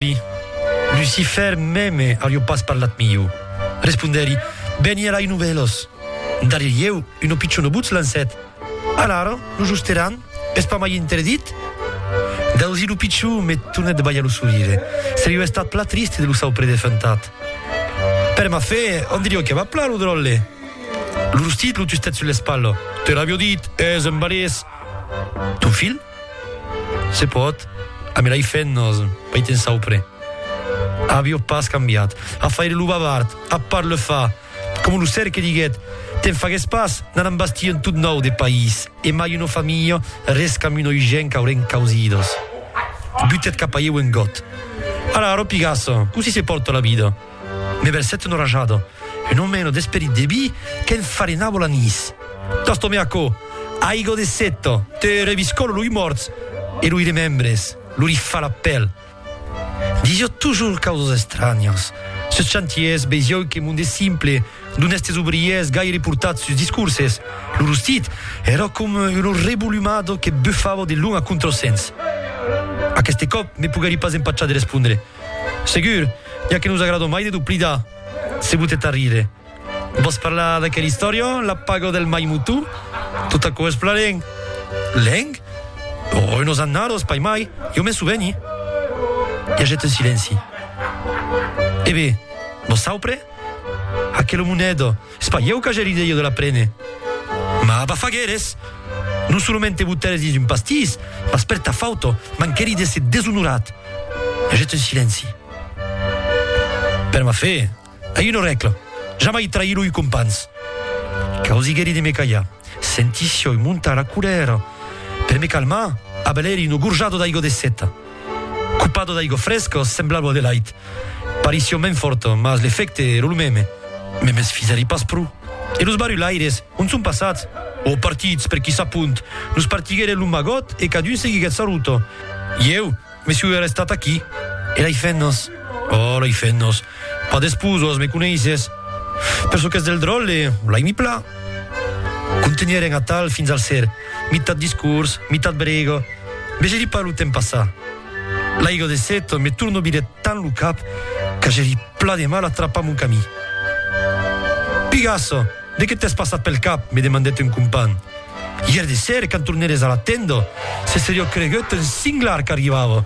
Ui, Lucifer meme ario pas parlat miu. Respondèri, Bèni a lai novèlos. Darrier ieu, un o pichon o butz lancèt. Alara, lo josteran, es pas mai interdit? Dausí lo pichon me tornèt de balhar lo sorire. Serio estat pla triste de lo sau predefuntat. Per ma fe, on dirio que va pla lo dròlle? Lo rostit lo tustèt sus l'espalha. Te l'avio dit, es un balés! Ton filh? Se pòt, a me l'ai fèt nos, pei te'n saupre. Avió pas cambiat. A faire lo bavard, a part le fa, coma lo cerque diguèt, te'n fagues pas, n'anam bastir un tot nòu de país, e mai una familha, res qu'amb un oigen qu'aurem causidos. Butèt cap a ieu un got. Ara, ropigasso, cossí se pòrta la vida? Me bèl sèt enrajada, un omèno d'esperit de vi qu'en farinava l'anís. Tastome aquò, aiga de seta, te reviscòla loi mòrts e loi remembres, lo rifà la pèl. Disiò tujors causas estranhas. Sus chantiers vesiòu que monde simple, d'onèstes obriers gaire portats sus discurses, lo rostit èra coma una revolumada que bufava de lon a contrasens. Aqueste còp me poguèri pas empachar de respondre. Segur, ja que nos agradon mai de dupli da se botet a rire. Vòs parlar d'aquel istorion, la pago del mai mutu? Tot aquò es plan lèng. Lèng? Oh, unos annados, pas mai, jo m'en soveni. I aget un silenci. E be, vosaupre? Aquelo monedo. Es pas ieu qu'agèri deia de la prene. Mas bafagueres! Non solament te botères dins un pastís, mas per ta fauta manquèri d'èsser deshonorat. Hagèt un silenci. Per ma fe, ai una rècla, jamai trair loi compans. Cau zigèri de me callar. Senti sioi montar la colèra. Per me calmar, abalèri una gorjada d'aiga de seta. Cupado d'aigua fresca, semblava Adelaide. Parission ben fòrta, mas l'efècte èra lo meme. Me mesfisèri pas pro. E los barulaires, ont son passats? Ò, partits, per qui sap ont. Nos partiguèren lo magot e cadun seguiguèt sa ruta. Ieu, me soi restat aquí. E lei fennas? Ò, lei fennas! Pas despús, ós me coneisses. Per çò qu'es del dròlle, l'ai mi plan. Contenheren atal fins al ser, mitat discors, mitat brega. Vegeri pas lo temps passar. L'aiga de set me tornobire tant lo cap que j'eri pla de mal a trapar mon camí. Pigassa, de que t'es passat pel cap? me demandèt un companh. Ièr de ser, quand torneres a la tenda, se seriá cregut un singlar qu'arribava.